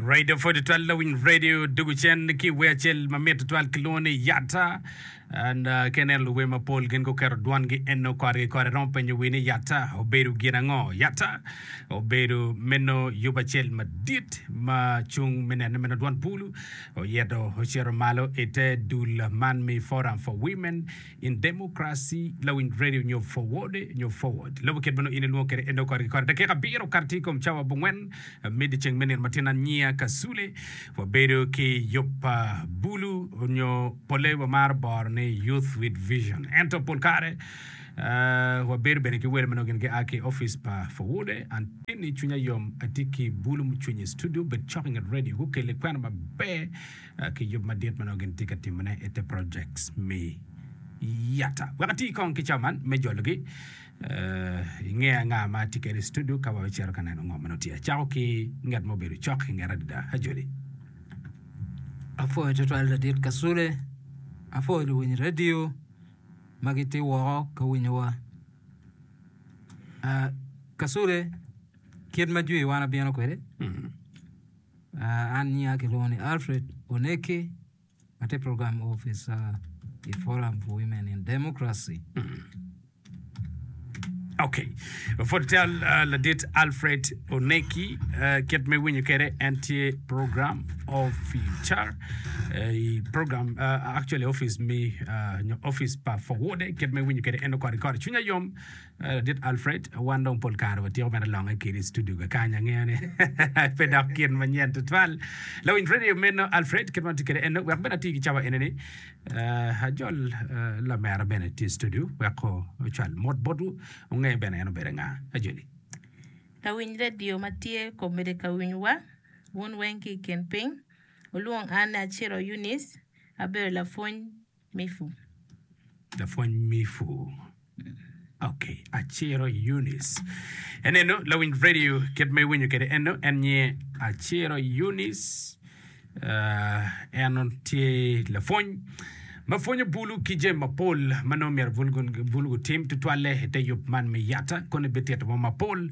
Radio 42 Lawiny Radio dugu cen ki wer acel ma mit tutwal kilwongo ni Yatta. And uh, ka ineno luwe mapol gin guketo dwangi eno korgi kore romo penyo wi ni Yatta obedo gin ango? Yatta obedo meno yub acel madit ma cung me neno meno dwan bulu oyeto ocito malo ite dul man me Forum for Women In Democracy Lawiny Radio nyo Forward nyo Forward lobo kit ma nongo in ilwongo kwede en dong kore ki kore dakika abiro kato tye i kom cawa abongwen me dyeceng me nino matin aniya Kasule wabedo ki yub pa Bulu nyo polle wamaro boro ni Youth with Vision ento pol kare wabedo bene ki welo ma nongo gin gia ki opic pa Forward anti ni cwinya yom atye ki Bulu mucwiny i studio obed cok inget radio gukelle kwena maber ki yub madit ma nongo gin tye ka timone i te projects me yata. Wek ati kong ki cawa man me jologi, eh, inge anga ma atye kede i studio ka wa wecito ka neno ngo ma nongo tye. Acako ki ngat ma obedo cok i ngeta adada, Ajoli. Apwoyo tutwal Ladit Kasule, apwoyo luwiny radio ma gitye woko ka winyowa. Ah, Kasule, kit ma jwi wan abino kwede, Mm. An nyinga kilwongo ni Alfred Oneki, atye program officer i Forum for Women in Democracy. Okay. Pwod cal uh, ladit Alfred Oneki, uh, kit me winyo kede en tye program officer uh, i program uh, actually office me uh, nyo office pa forward kit me winyo kede en okori kori cwinya yom Ladit Alfred, wan dong pol kare watiko mere longe kiri i studio kakany. Angeyo ni pe dok gin manyen tutwal. Lawiny radio meno Alfred, kit ma ati kede eno, wek bene ati ki cawa eneni, uh, ajol uh, lamera bene ti i studio wek o, ocwal mot botwu, onge bene en obede nga. Ajoli. Lawiny radio ma tye komede ka winywa, wun weng ki i kin piny, wulwong an ni Aciro Eunice, abedo lapwony Mifu. Lapwony Mifu. Ok, Aciro Eunice. Enenu lawiny radio kit ma iwinyo kwede eno, en nyinge Aciro Eunice. Uh, en tye lapwony ma pwonyo bulu ki jami mapol ma nongo myero bulu, bulu gutim tutwalle i te yub man me yata, kono ebitito mo mapol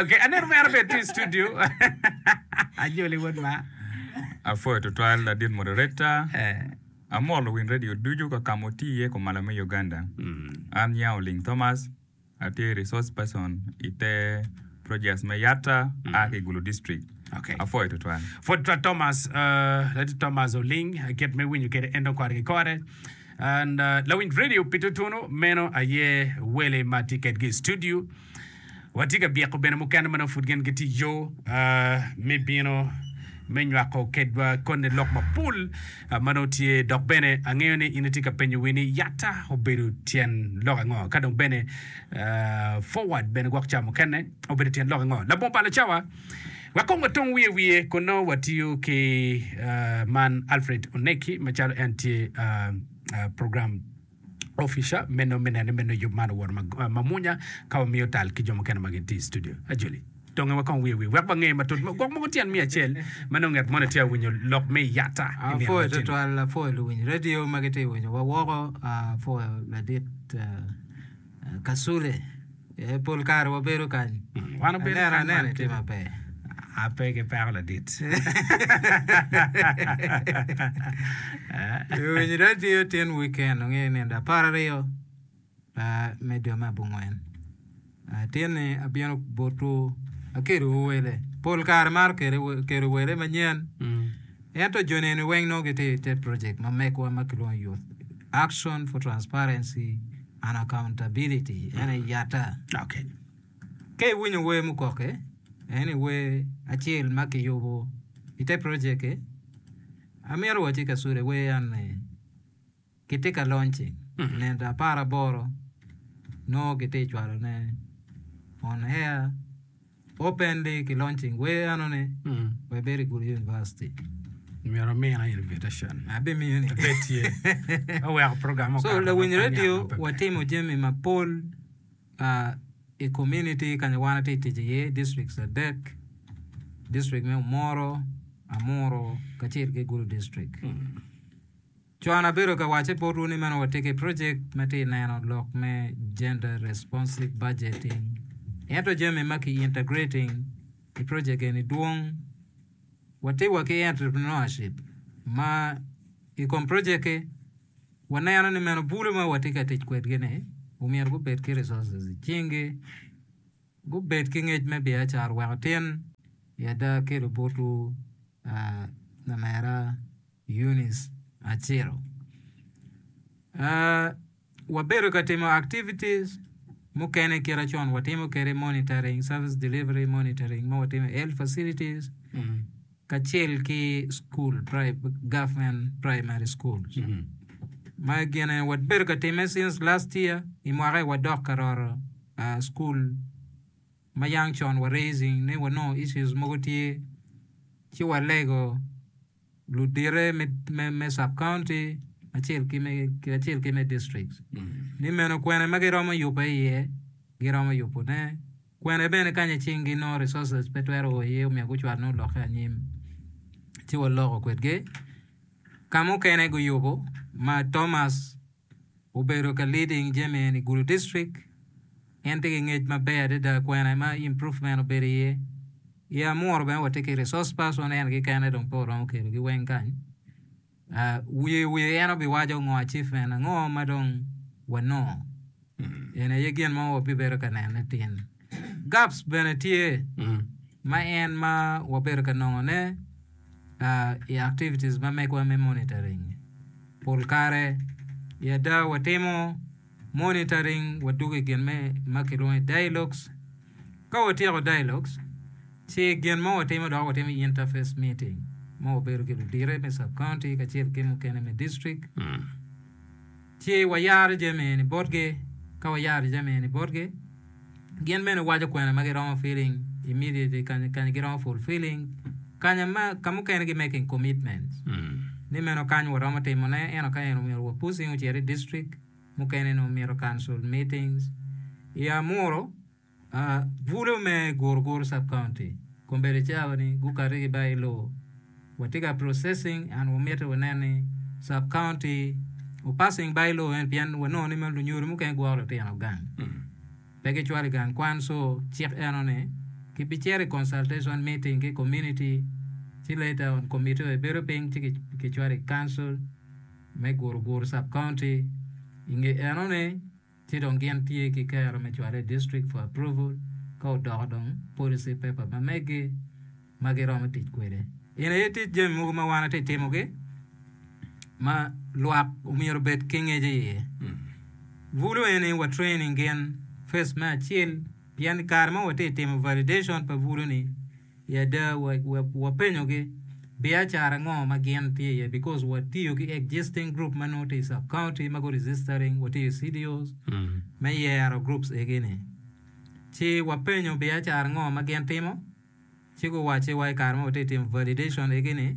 Okay, aneno mere bene tye i studio. Ajoli wod ma. Apwoyo tutwal ladit moderator. Eh. Amor luwiny radio ducu kakama otii iye kumalo me Uganda. An Nya Oling Thomas, atye Resource Person i te Projects me Yatta, aa ki i Gulu District. Okay. Apwoyo tutwal. Pwod tutwal Thomas, uh, ladit Thomas Oling, uh, kit me winyo kede en dong kore ki kore. And uh, lawiny radio pi tutunu meno aye wele ma tye kedgi i studio. Watye ka byeko bene mukene ma nongo pud gin gitye i yo me bino me nywako kedwa koni lok mapol ma nongo tye. Dok bene angeyo ni in itye ka penyo wi ni yatta obedo tyen lok ango, ka dong bene forward bene gwok ca mukene obedo tyen lok ango. Labongo pa lacawa, wakong watong wiye wiye kun nongo watiyo ki man Alfred Oneki macalo en tye program opica me nongo me nene me nongo yub man owoto mamwonya ka wamiyo tal ki jo mukene ma gitye i studio. Ajoli, donge wakong wiye wi wek wange matut gwok mogo tyen miya acel ma nongo ngat moni tye winyo lok me yata i nino Apwoyo matino. twatwal, apwoyo luwiny radio ma gitye winyowa woko, apwoyo ladit eh, Kasule, ee pol kare wabedo kany. Wan obedo Aneno kany aneno bene. tye maber. Ape ki peko ladit. Eh, Iwinyo radio tin weekend ongeyo nino da apar aryo ah, me dwe me abongwen. Ah, Tinni abino botwu akedowu wele. Pol kare maro kede we- kedo wele manyen. Mm. Ento jo neni weng nongo gitye i te project ma megwa ma kilwongo Youth Action for Transparency Unaccountability en aye yata. Okay. Ka iwinyo wer mukoke, en aye wer acel ma kiyubo i te project-ti. Amito wacci Kasule wer en ni kitye ka launching i nenda apar aboro nongo kitye ka cwalone on air. Openly ki launching wer enoni wek ibed i Gulu University. Myero amina invitation. Abimiyo ni. Pe tye. Aweko program okato. So lawiny radio watimo jami mapol uh, i community kanya wan atye tic iye, districts adek, district me Omoro, Amuru kacel ki Gulu district. Hmm. Con abedo ka wacce botwu ni meno watye ki projek me ti neno lok me Gender Responsive Budgeting ento jami ma ki integrating i projek eni dwong. Watye wa ki Entrepreneurship ma i kom projek-ki waneno ni meno bulu ma watye ka tic kwedgi-ni omyero gubed ki resources i cingi, gubed ki ngec me biacara wek otin i ada kelo botwu lamera. Eunice Aciro, Wabedo ka timo activities mukene kite con watimo kede monitoring, service delivery monitoring ma watimo i health facilities kacel ki school, government primary schools. Ma gine wabedo ka timme since last year i mwaka-ni wadok ka roro school ma young con wa raising ni wanongo issues mogo tye ci walego ludite me sub-county kacel ki me districts ni meno kwene ma giromo yubbe iye giromo yubone, kwene bene kanya cing ginongo resources pe twero o iye omyero gucwalne olokke anyim ci waloko kwedgi. Ka mukene guyubo ma Thomas. Obedo ka leading jami eni i Gulu District. En tye ki ngec maber adada kwena ma improvement obedo iye. I Amuru bene watye ki resource person en kekene dong pe waromo kelogi weng kany. Wiye wiye en obiwaco ngo achievement ango ma dong wanongo. Eni aye gin ma wabibedo ka nene tin. Gaps bene tye ma en ma wabedo ka nongone. i activities ma megwa me monitoring. Pol kare i ada watimo monitoring wadwogo i gin me ma kilwongo ni dialogues. Ka watyeko dialogues, ci gin ma watimo dok watimo interface meeting ma wabedo ki ludite me sub county kacel ki mukene me district. Ci wayaro jami eni botgi. Ka wayaro jami eni botgi, gin bene waco kwena ma giromo filling immediately kanya kanya giromo fulfilling kanya ma ka mukene gi making commitments ni meno kany waromo timo ne eno ka eno myero wa pushing ocit i district mukene ni omito council meetings i amuru Bulu me Guruguru Sub County kombeddi cawa ni gukati ki ba ilo. Watye ka processing and wamite wanen ni Sub County o passing ba ilo eni pien wanongo ni lunyodo mukene gwoko litino gang. Pe gicwalo i gang kwan so cik eno ni ki bi cito i consultation meeting ki community ci later on committee oye bedo piny ci ki cwalo i council me Guruguru Sub County. I nge eno ni Ci dong gin tye ki kero me cwale i district for approval ka odoko dong policy paper ma megi ma giromo tic kwede. In aye tic jami mogo ma wan atye timogi ma lwak omyero obed ki ngec i iye. Bulu eni wa training gin first me acil pien i kare ma watye timo validation pa bulu ni I ada, wapenyogi biacara ngo ma gin tye iye because watiyo ki existing group ma nongo tye i sub county ma gu registering, watiyo ki CDOs me yero groups egi ni. Ci wapenyo biacara ngo ma gin timo ci guwacci wa i kare ma watye ka timo validation egi ni,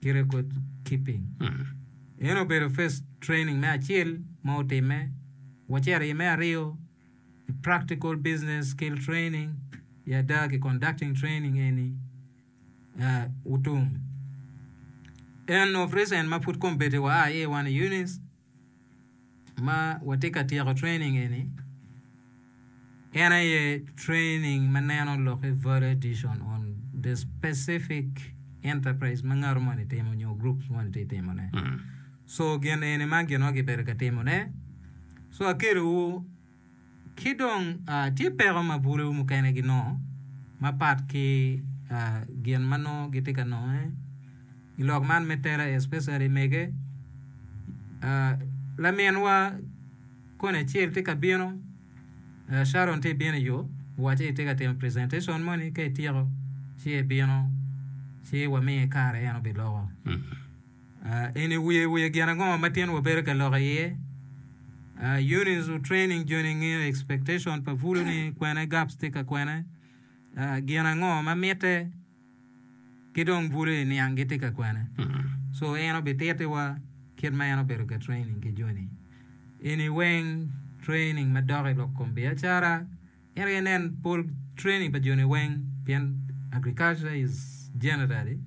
ki record keeping. Eno obedo first training me acel ma otime, wacito i me aryo i practical business skill training i ada ki conducting training eni uh, Utum. En of recent ma pud kombeddi wa a aye wan i Eunice, ma watye ka tyeko training eni en aye training ma neno lok ki value addition on the specific enterprise ma ngato moni timo nyo group moni tye timo ne so gin eni ma gin ma kibedo ka timo ne so akelo wu Ki dong, tye peko ma bulewu mukene ginongo mapat ki gin ma nongo gitye ka nonge i lok man me tela, especially mege. Laminwa koni acel tye ka bino, Sharon tye ka bino i yo, owaco ni itye ka timo presentation moni, ka ityeko ci ibino ci wamiye kare en obiloko. In iwiyo i wi gin ango ma tyenwa bedo ka lok iye? Units of Training Joni ngeyo expectation pa Pulu ni kwene gaps tye ka kwene? Gin ango ma mitte ki dong Pulu i niang gitye ka kwene? So en obitittiwa kit ma en obedo ka training ki Joni. In iweng training madok i lok kom biacara? Ento aye nen pol training pa joni weng pien agriculture is generally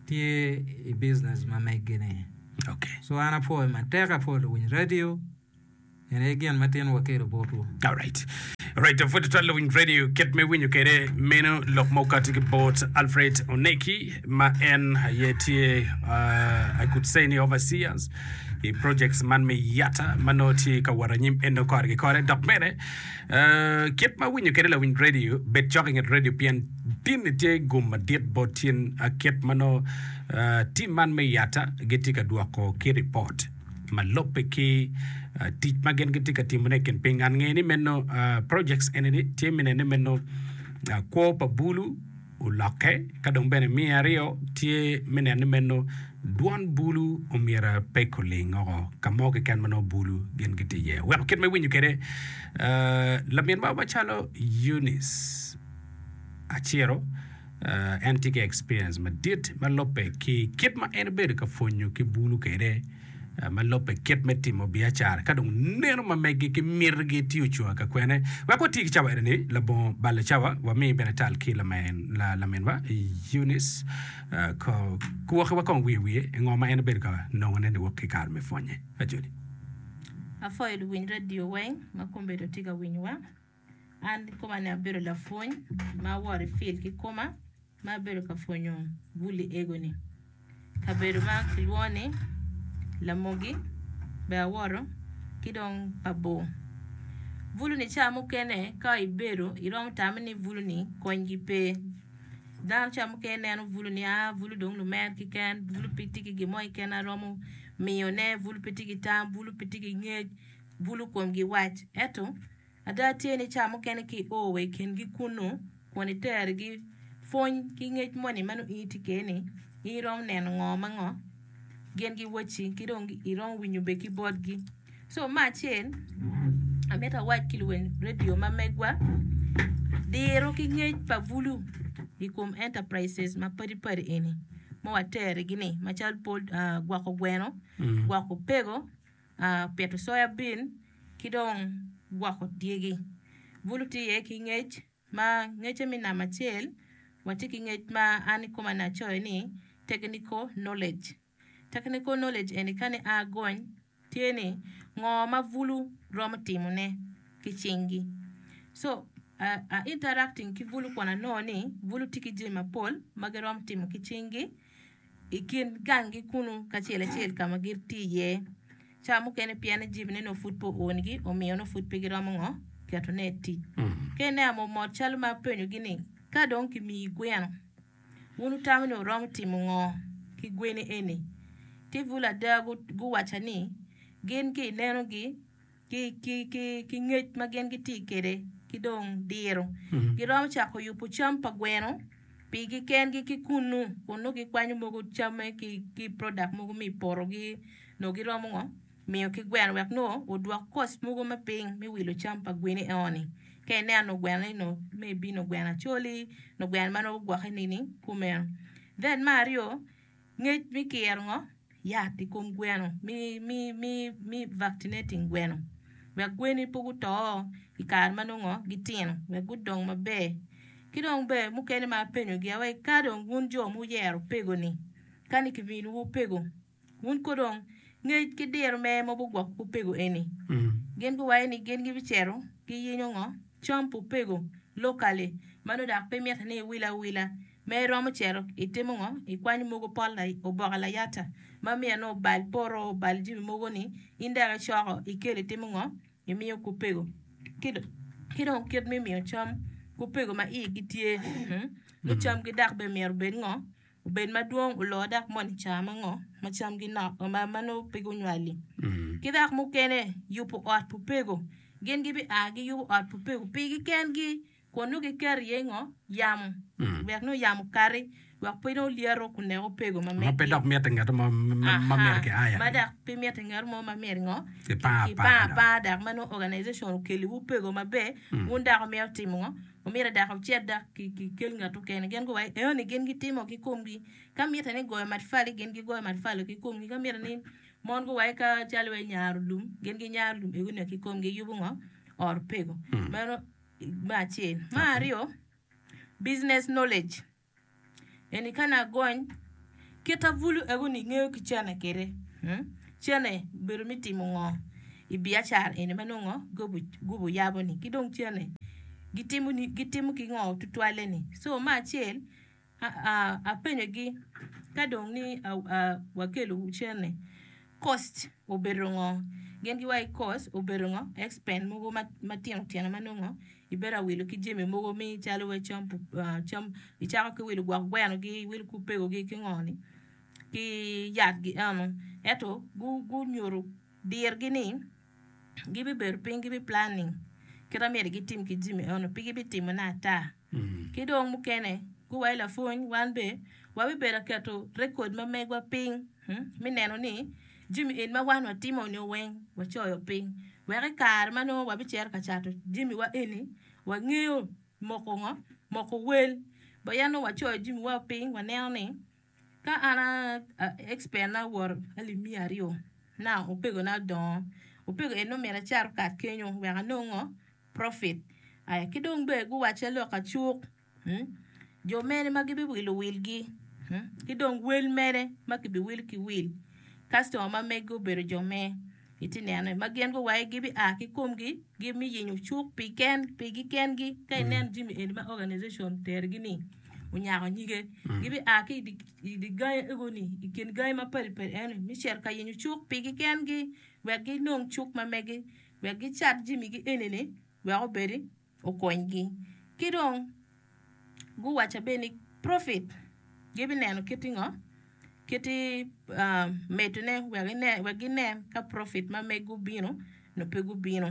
tye i business ma meggi ni. Okay. So an apwoyo matek apwoyo luwiny radio en aye gin ma tin wakelo botwu. Alright. Alright, pwod itwal luwiny radio kit me winyo kede meno lok ma okati ki bot Alfred Oneki ma en aye tye uh, I could say ni overseers i projects man me yata ma nongo tye ka wot anyim en nongo kore ki kore dok bene Kit ma Awinyo Kwede, Lawiny redio bed cok i nget redio pien tinni tye gum madit bot cen. Kit ma nongo tim man me yata gitye ka dwoko ki ripot ma lubbe ki tic ma gin gitye ka timone i kin piny. Ngat ngeye ni meno projects eni tye minene meno kwo pa bulu, olokke, ka dong bene miyo aryo tye me neno ni meno dwon bulu omyero pe kuling oko ka mo keken ma nongo bulu gin gitye iye. Weko kit ma iwinyo kwede, ah, lamin maro macalo Eunice Aciro, ah, en tye ki experience madit ma lubbe ki kit ma en obedo ka pwonyo ki bulu kwede. ma lobbe kit me timo biacara ka dong neno ma meggi ki mitigi tye ocung ka kwene. Wek wati ki cawa eni-ni labongo balo cawa, wami bene tal ki laminwa Eunice Kwokiwa kong wiye wiye ngo ma en obedo ka nongone niwok ki kare me pwonye. Ajoli. Apwoyo luwiny radio weng ma kombedo tye ka winyowa. An kikoma ni abedo lapwony ma aworo i field kikoma ma abedo ka pwonyo bul i ego ni. Kabedo ma kilwongo ni Lamogi bene aworo ki dong Pabor. Bulu ni ca mukene ka ibedo iromo tame ni bulu ni kony gi pe. Dano ca mukene neno bulu ni aa bulu dong lumer kiken, bulu pe tye ki gin mo kiken ma romo miyone, bulu pe tye ki tam, bulu pe tye ki ngec, bulu komgi wac. Eto. Ada tye ni ca mukene ka io wa i kingi kunnu kun iterigi, pwony ki ngec moni ma nongo in itye kwede-ni, in iromo neno ngo ma ngo? Gin giwacci ki dong iromo winyo bene ki botgi. Co me acel amito awac ki luweny redio ma megwa, diro ki ngec pa bulu i kom enterprises mapadi padi eni ma waterigi-ni macalo gwoko gweno, gwoko opego, pito soya bin ki dong gwoko dyegi. Bulu tye iye ki ngec ma ngecce me namba acel watye ki ngec ma an i koma ni acoyo ni technical knowledge. Technical knowledge eni ka ni a gony tye ni ngo ma bulu romo timone ki cingi so a interacting ki bulu kun anongo ni bulu tye ki jami mapol ma giromo timo ki cingi i kin ganggi kunnu kacel acel ka ma gitye iye ca mukene pien ni jibine nongo pud pe oonigi omiyo nongo pud pe giromo ngo ketone i tic ka ineno mot mot calo ma apenyogi ni ka dong kimiyi gweno wun wutamo ni wuromo timo ngo ki gweni eni ti bulu ada guwaca ni gin ka inenogi ki ngec ma gin gitye kwede ki dong diro. Giromo cako yubo cam pa gweno pigi kengi ki kunnu kun nongo gikwanyo mogo camme ki product mogo ma i potogi nongo giromo ngo miyo ki gweno wek nongo odwok cost mogo me piny me wilo cam pa gweni eno-ni ka ineno nongo gweno ni nongo maybe nongo gweno acoli nongo gweno ma nongo gugwokke nini kumeno. Then me aryo Ngec me kiro ngo yat i kom gweno me vaccinating gweno wek gweni pe guto i kare ma nongo gitino wek gudong maber ki dong bene mukene ma apenyo gia wai ka dong wun jo ma wuyero pego ni kani ki minu wu pego wun kono dong ngec ki diro mere ma bi gwoko wu pego eni gin gu waci ni gin gi bi cito gi yenyo ngo cam pu pego locally ma nongo dok pe mitte ni iwilo awila Ma iromo cito itimo ngo? Ikwanyo mogo pol oboke layata ma miyo ni obal poto obal jami mogo ni in dok icoko ikelo itimo ngo? Imiyo kupego ki dong kit me miyo cam kupego ma igi tye ni cam gi dok bene myero obed ngo? Obed madwong oloo dok moni ica ma ngo ma cam gi nok ma nongo pe gunywali ki dok mukene yubo ot pupego gin gibi a giyubo ot pupego pigi kengi. Kun nongo giketo iye ngo? Yamo, wek nongo yamo okati, wek pe nongo lyeto kun nek opego ma medde. Ma pe dok mitte ngeto mo ma myero kiaya. Ma dok pe mitte ngeto mo ma myero ngo? Kipang apanga dok ma nongo organization okeliwu opego maber, wun dok wumito wutimo ngo? Wumito dok wucit dok kikel ngat mukene. Gin guwaco ni, Eno ni gin gitimo ki komgi. Ka mitte ni goyo matafali, gin gigoyo matafali ki komgi. Ka mitte ni mon guwaco ka calo wai nyaro lum, gin ginyaro lum egu nio ki komgi, giyubo ngo? Ot opego. Meno. me acel. Me aryo, business knowledge eni kani agony kit abulu eko ni ingeyo ki cene kwede cene obedo me timo ngo i biacara eni ma nongo gubo yabo ni ki dong cene gitimo ki ngo tutwalle ni so me acel Apenyogi, Ka dong ni wakelowu cen-ni, kost obedo ngo? Gin giwacci, Kost obedo ngo? Expense mogo matino tino ma nongo ibedo awilo ki jami mogo me calo cam, icako ki wilo gwok gwenogi, iwilo ki opegogi ki ngo-ni, ki yatgi eno. Ento gunyuto dirgi ni gibibedo piny gibiplanning kit ma myero gitim ki jami eno pe gibitimone ata. Ki dong mukene, guwayo lapwony, wan be wabibedo ka keto rekod ma megwa piny me neno ni jami eni ma wan watimo nio weng wacoyo piny, wek i kare ma nongo wabicito ka cato jamiwa eni, wangeyo moko ngo, moko wel. Bot yam nongo wacoyo jamiwa piny, waneno ni Ka an a expert na woro alip miya aryo na opego na dongo opego en nongo myero acar okat kenyo wek anong ngo profit aya ki dong bene guwaca lok acuk jo mene ma gibi wilo wil gi ki dong wel mene ma kibi wil ki wil customer ma mege obedo jo me. Itye neno ma gin guwayo gibia ki komgi gi me yenyo cuk pigi kengi ka ineno jami eni ma organization terigi ni onyako nyige gibia ki idi gangi egoni ikin gangi mapadi padi eno me cito ka yenyo cuk pigi kengi wek ginong cuk ma megi wek gicat jamigi enini wek obedi okonygi. Ki dong guwacca bene ni profit gibineno kiti ngo, kiti medone wek ginen ka profit ma megi obino nyo pe gubino.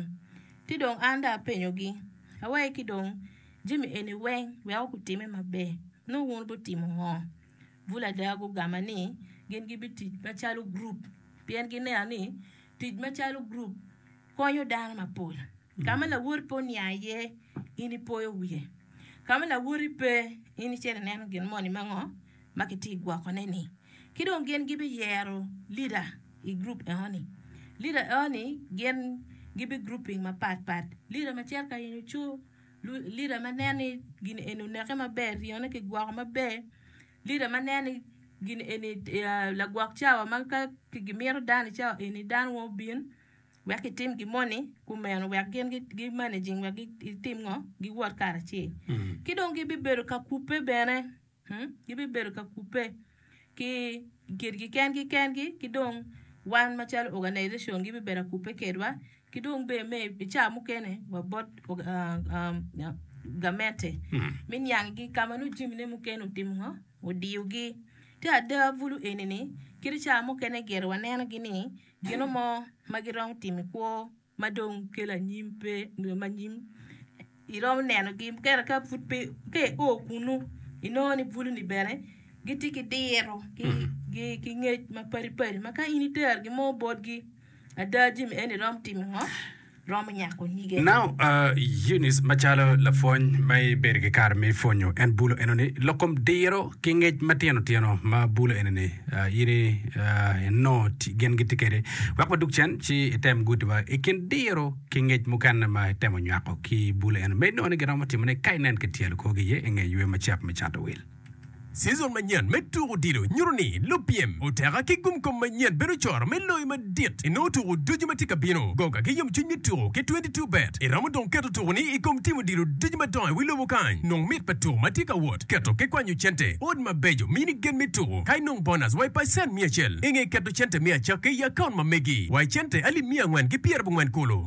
Ci dong an dong apenyogi awaci ki dong jami eni weng wek wek gutime maber nongo wun wubitimo ngo? Bulu ada gugamba ni gin gibitic macalo gurup pien gineno ni tic macalo gurup konyo dano mapol. Ka ma lawoti pe oniang iye, in ipoyo wiye. Ka ma lawoti pe, in icito ineno gin moni ma ngo ma kitye ka gwokone-ni. Ki dong gin gibiyero lida i gurup enoni. Lida enoni gin gibigruping mapatpat. Lida macito ka in oco, lida ma neno ni gin eni oneke maber, ryone kigwoko maber, lida ma neno ni gin eni lagwok cawa ma ka gimito dano i cawa eni, dano weng obin. wek kitim gin moni kumeno wek gin gi managing wek gitim ngo giwot karacel ki dong gibi bedo ka kupe bene gibi bedo ka kupe ki kitgi kengi kengi ki dong wan macalo organization gibi bedo ka kupe kedwa ki dong bene me i caa mukene wa bot gamente me niang gi ka ma nongo jami ne mukene otimo ngo odiyo gi te ada bulu eni ni kit caa mukene gire waneno gi ni Gino mo ma giromo timo i kwo ma dong kelo anyim pe nyo ma nyim iromo nenogi mukene ka pud pe ka i o kunu inongo ni bulu-ni bene gitye ki diro ki ngec mapadi padi ma ka in itero gin mo botgi ada jami eni iromo timo ngo romo nyako nyige. Now Eunice macalo lapwony ma ibedo ki kare me pwonyo en bulo enoni lok kom diro ki ngec matino tino ma bulo enoni in inongo gin gitye kwede wek wadug cen ci item guti wa i kin diro ki ngec mukene ma itemo nywako ki bulo eno ma inongo ni giromo timone ka inen ki tyelo korgi iye inge ywe macek me cato wil. Cizon manyen me tuko odilo nyuto ni lupyem oteka ki gumkom manyen bedo coro me loyo madit inongo tuko ducu ma tye ka bino. Goga ki yomcwiny me tuko ki twenty two bet iromo dong keto tukoni i kom tim odilo ducu madongo i wi lobo kany. Nong mit pa tuko ma tye ka wot, keto ki kwanyo cente, ot mabeco, mini gen me tuko, ka inong bonus wa i pacen miya acel. Inge keto cente me acakki i akaunt ma megi wa i cente alip miya angwen ki pyerabongwen kulu.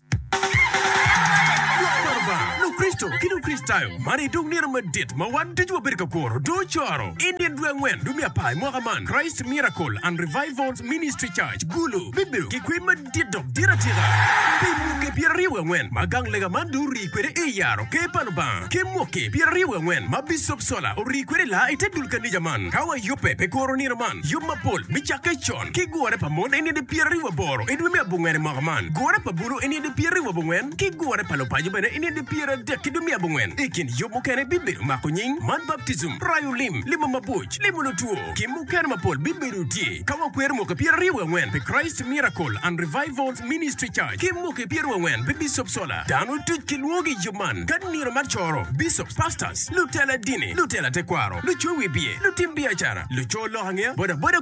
Lukricito ki Lukricitayo, man aye dong nino madit ma wan ducu wabedo ka kuro. Dong ocoro i nino dwe angwen dwe me apar i mwaka man, Christ Miracle and Revivals Ministry Church, Gulu, bibedo ki kwir madit dok dit atika. Pi mwoki pyeraryo wiye angwen ma gang lega man dong orii kwede i yaro Ker pa Lubanga, ki mwoki pyeraryo wiye angwen ma Bicop Sola orii kwede i laa i te dul kanija man, ka wayubbe pi kuro nino man, yub mapol me cakke con. ki gure pa mon eni nidi pyeraryo wa boro i dwe me abongwen i mwaka man, gure pa bulu eni nidi pyeraryo wa bongwen, ki gure pa lupaco bene eni nidi pyeradek ki dwe me abongwen. I kin yub mukene bibedo mako nying, mad baptijim, rayo lim, limo mabuc, limo lutwo, ki mukene mapol bibedo tye. Ka wakwero mwaki pyeraryo wa angwen pi Christ Miracle and Revivals Ministry Church ki mwaki pyeraryo wa angwen pi Bishop Sola, dano duc kilwongo ki i yub man ka nino ma coro, bishops, pastors, lutela dini, lutela tekwaro, lucowi biye, lutim biacara, luco lok angeya, bodaboda,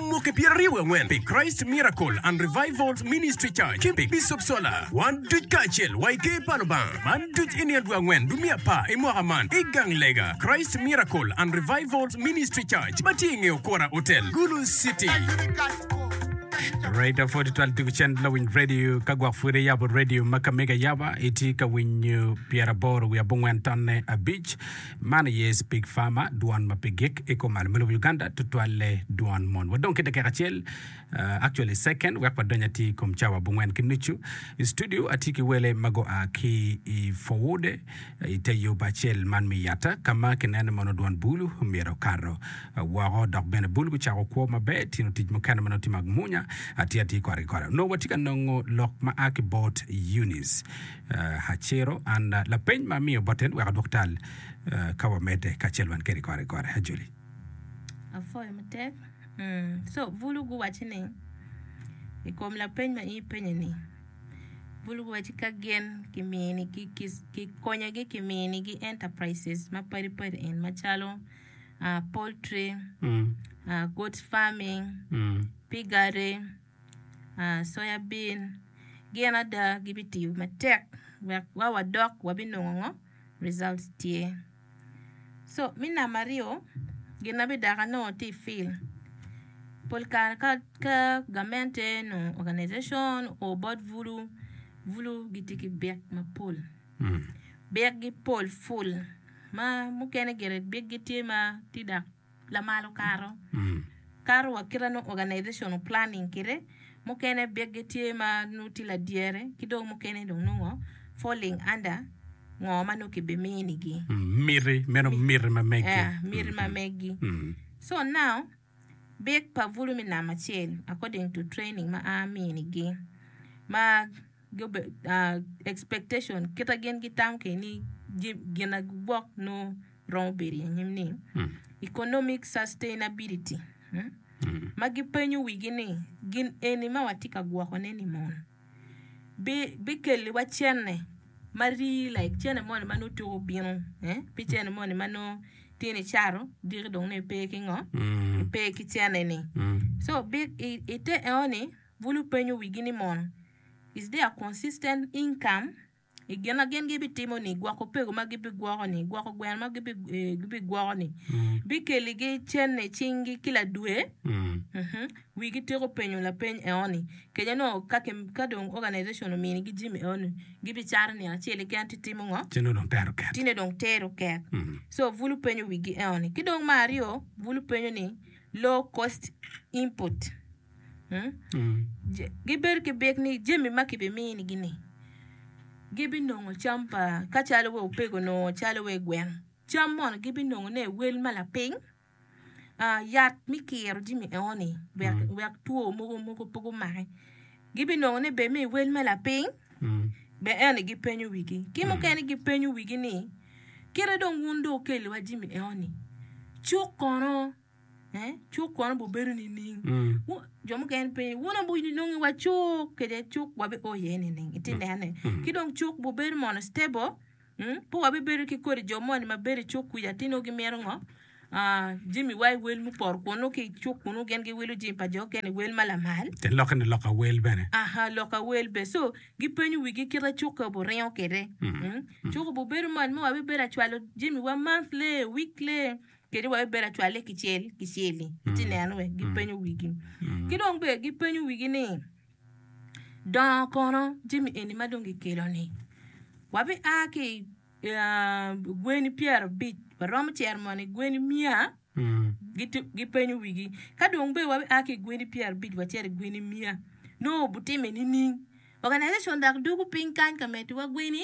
Mwaki pyeraryo wi angwen pi Christ Miracle and Revivals Ministry Church ki pi Bicop Sola. Wan duc kacel wa i Ker pa Lubanga. Man duc i nino dwe angwen dwe me apar i mwaka man i gang lega Christ Miracle and Revivals Ministry Church ma tye i nge Okora Hotel, Gulu City. Raida pwod itwal tugo cen lawiny radio ka gwok pwod iyabo radio ma ka mega yaba itye ka winyo pyeraboro wiye abongwen tonne abic Man aye Speak Farmer, dwon ma pi gik i kom alum me lobo Uganda, tutwalle dwon mon. Wadong ki dakika acel, uh, actually second, wek wadony atir i kom cawa abongwen ki nucu. I studio atye ki wele ma gua ki i Forwood, i te yo bacel man me Yatta, ka ma kineno mono dwon bul myero okato uh, woko, dok bene bul gucako kwo maber. Tye nongo tic mukene ma nongo tye ma gumunya, atye atir kore ki kore. Onongo watye ka nongo lok ma a ki bot Eunice. Haciro, An, lapeny ma amiyo bote ni wek adwok tal ka wamedde kacel wan kede kore kore. Hajuli. Apwoyo matek. Co bulu guwacci ni, i kom lapeny ma in ipenye-ni, bulu guwacci ka gin kimini, kikonyogi kiminigi enterprises ma padi padi en macalo poultry, goods farming, piggery, Soyabin gin ada gibitiyo matek wek wa wadok wabinongo ngo results tye so me namba aryo gin ma bidok anongo tye i field pol kare ka ka gamente nyo organization oo bot bulu, bulu gitye ki byek mapol byek gi pol ful ma mukene gire byek gi tye ma tye dok. lamal okato kato wa kite nongo organizational planning kite mukene biggi tye ma nongo tye ladyere ki dong mukene dong nongo falling under ngo ma nongo ki bimini gi Miti, meno miti ma megi. yeah, miti ma megi Mm. so now big pa bulu me namba acel according to training ma a mini gi ma expectation kit ma gin gitamo kwede ni gin ma gugwok nongo romo bedo i anyim ni economic sustainability ma gipenyo wigi ni gin eni ma watye ka gwokone ni mon bikelliwa cene ma rii like cene moni ma nongo tuko bino pi cene moni ma nongo tye nicato diki dong nongo ipe ki ngo ipe ki cene ni so i te enoni Bulu penyo wigi ni mono, Is there consistent income? I gin ma gin gibitimo-ni, gwoko pego ma gibigwoko-ni, gwoko gweno ma gibigwoko-ni, bikeligi cente i cinggi kila dwe? Wigi tiko penyo lapeny enoni kenya nyo ka dong organization ominigi jami enoni, gibicato nino acel keken ci timo ngo? Ci nongo dong tero ket. Ci nongo dong tero ket. So bulu penyo wigi enoni. Ki dong me aryo, bulu penyo ni, Low cost input. Gibed ki byek ni jami ma kibiminigi-ni gibinongo cam pa ka calo wa opego nongo calo wa i gweng cam mono gibinongone i wel ma lapiny, yat me kiro jami enoni wek two mogo pe gumaki gibinongone bene me i wel ma lapiny bene eno aye gipenyo wigi. Ki mukene gipenyo wigi ni kit ma dong wun dong wukelo wa jami enoni cuk kono. Cuk kono obibedo nining? Jo mukene gipenyo, wun aye wun inongo iwa cuk kede cuk wabio iye nining? Itye nenone. Ki dong cuk obibedo mono stable, pe wabibedo ki kodi jo moni ma bedo i cuk kwica ci nongo gimito ngo? Jamiwa i wel mupoto kun nongo ki i cuk kunnu gin giwilo jami pa jo mukene i wel ma lamal. Te lokke ni lok awel bene. Aha, lok awel bene. So, gipenyo wigi kite cukki obiringo kwede. Cuk obibedo moni ma wabibedo acwalo jamiwa monthly, weekly. kede wek ebed acwalle kicel kicel-li. Itye neno wek gipenyo wigi. Ki dong bene gipenyo wigi ni, Dongo kono jami eni ma dong gikelo-ni? Wabia ki i gweni pyerabic, waromo cito mono i gweni miya? Gipenyo wigi. Ka dong bene wabia ki i gweni pyerabic wacito i gweni miya, nongo obitime nining? Oganaijacion dok dwogo piny kany ka meddiwa gweni.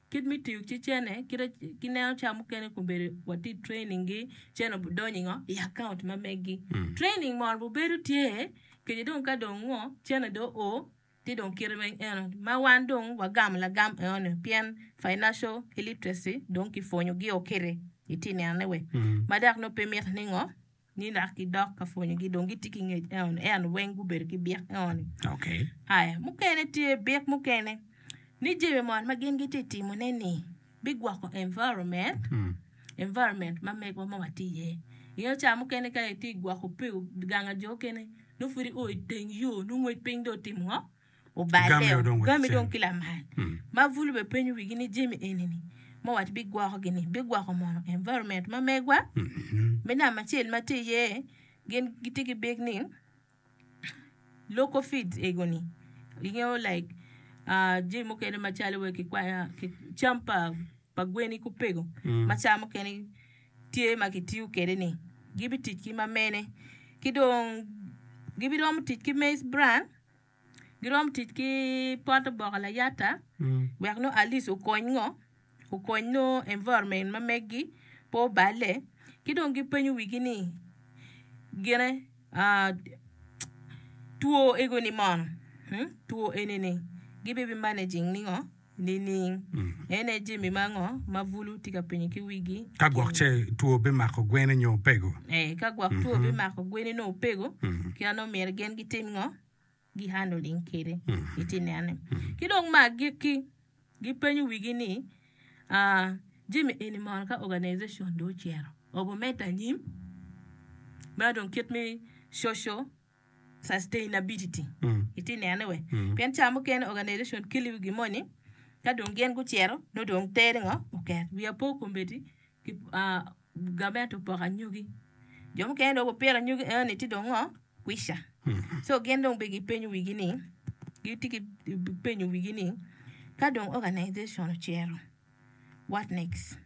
Kit me tiyo ki cene kite ki neno ca mukene kun bedo watye i training gi cene budonyo ingo i account ma megi training moro bubedo tye kenyo dong ka dong ngo cene dong o ci dong kite ma eno ma wan dong wagamo lagam eno ni pien financial illiteracy dong kipwonyo gi o kiti itye neno ne wek ma dok nongo pe miti ni ngo ni lak gidok ka pwonyogi dong gitye ki ngec eno ni eno weng gubedo ki byek eno ni Okay. aya mukene tye byek mukene ni jami moni ma gin gitye timone ni bigwoko environment Mm. environment ma megwa ma watye iye ingeyo ca mukene ka itye gwoko pe ganga jo okene nongo pud i o iteng yo nongo ngwec piny dong otimo ngo Obaleo, gami dong ki lamal. Ma bulu be penyo wigi ni jami eni ni ma wat bi gwoko gi ni bi gwoko mono environment ma megwa? Me namba acel ma tye iye gin gi tye ki big ni local feeds ego ni ingeyo like jami mukene ma calo wai ki kwai cam pa gweni ki opego ma caa mukene tye ma ki tiyo kwede ni gi bi tic ki ma mene ki dong gi bi romo tic ki maize bran. giromo tic ki pot oboke layata wek nongo at least okony ngo okony nongo environment ma megi pe obale ki dong gipenyo wigi ni gine two ego ni mono two eni ni gibe managing ni ngo. Nining? En aye jami ma ango ma bulu tye ka penyo ki wigi? Ka gwok ce two bimako gwene nyo opego? Ee, ka gwok two bimako gwene nyo opego, kit ma nongo myero gin gitim ngo? Gi-handling kwede. Itye ka neno-ni? Ki dong me agikki, gipenyo wigi ni, aa, Jami eni mono ka organization dong ocito, obimedde anyim? Meno dong kit me coco. sustainability itye nene we pien ca mukene organization kili wi gi moni ka dong gin gucito nongo dong teri ngo oket wiya pe okombedi ki gavment opoko anyogi jo mukene dong gupito anyogi enoni ci dong ngo kwica so gin dong bene gipenyo wigi ni gitye ki penyo wigi ni ka dong organization ocito what next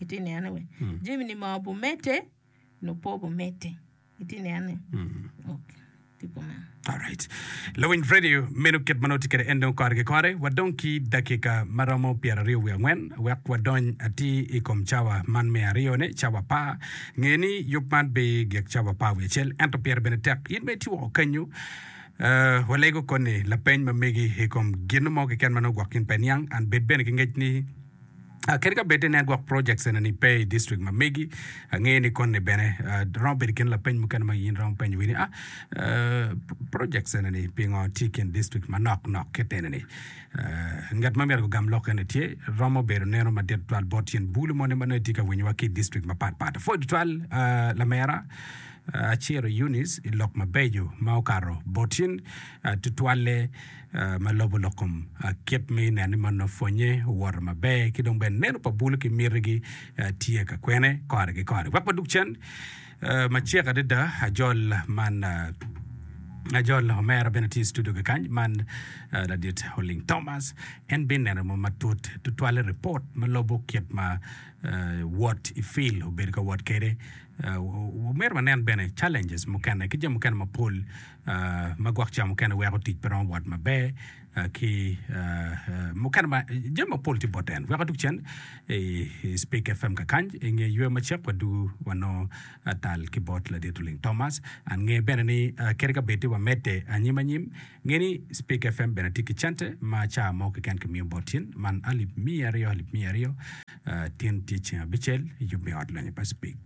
itye nene we jami ni ma obumedde Lupobo meti itye neno ni ok tye kumeno. Alright. Lawiny Freddie, meno kit ma nongo tye kwede en dong kore ki kore. Wadong ki dakika ma romo pyeraryo wiye angwen wek wadony atir i kom cawa man me aryone, cawa par. Nge ni yub man pe gik cawa par wiye acel, ento pire bene tek. In ma itye woko kenyo, eh, walego koni lapeny ma megi i kom gin mo keken ma nongo gwok in pe iniang, and bed bene ki ngec ni, Kadi ka bed ni network projects ena-ni pe i district ma megi, angeyo ni koni bene romo bedo kit lapeny mukene ma in iromo penyo wiri ni, A, projects ena-ni pingo tye i kin district manok nok kit eni-ni? Ngat ma myero gugam lok eni tye romo bedo neno madit tutwal bot tyen bulu moni ma nongo etye ka winyowa ki i district mapat pat. Apwoyo tutwal Lamera Acero Eunice i lok mabeco ma okato botyen tutwalle. ma lobo lok kom kit me neno ni mon ma pwonnye owoto maber ki dong bene neno pa bulu ki mitigi tye ka kwene kore ki kore. Wek wadug cen macek adada ajol man ajol omera bene tye i studio kekany man ladit oling Thomas en bene neno mo matut tutwale report ma lobo kit ma wot i fil obedo ka wot kwede. Myero wanen bene challenges mukene ki jami mukene mapol ma gwok ca mukene weko tic pe romo wot maber ki mukene ma jami mapol tye bot en weko tukcen i Speak FM kakany i nge yweyo macek wadwogo wanongo tal ki bot Ladit Luling Thomas and nge bene ni kadi ka bed tye wamedde anyim anyim nge ni Speak FM bene tye ki cente ma ca mo keken kimiyo bot tin man alip miya aryo alip miya aryo tin tye ceng abicel yub me ot lonyo pa Speak